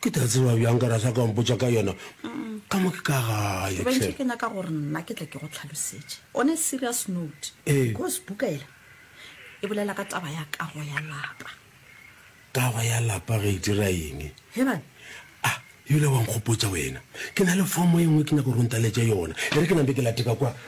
Ke tla tseba bjang ka rasa ka mpotša ka yona ka mo ke ka gae hle. Bentše ke nyaka gore nna ke tle ke go tlhalosetše on a serious note Ee. because buka yela e bolela ka taba ya kago ya lapa. Kago ya lapa ge e dira eng? He bane. Ah, yole wa nkgopotša wena. Ke na le fomo e nngwe ke nyaka gore o ntaletše yona. E re ke nampe ke late ka kwa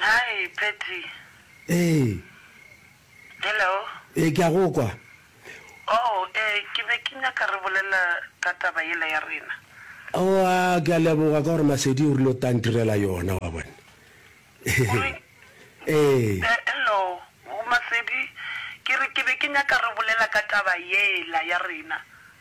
Hi Patty. Ee. Hello. Ee, ke a go kwa. Oh, ee, ke be ke nyaka re bolela ka taba yela ya rena. Oh, a, ke a leboga ka gore Masedi o rile o tla ntirela yona, wa bona. Ee. Ee. Hello, Masedi. Ke re ke be ke nyaka re bolela ka taba yela ya rena.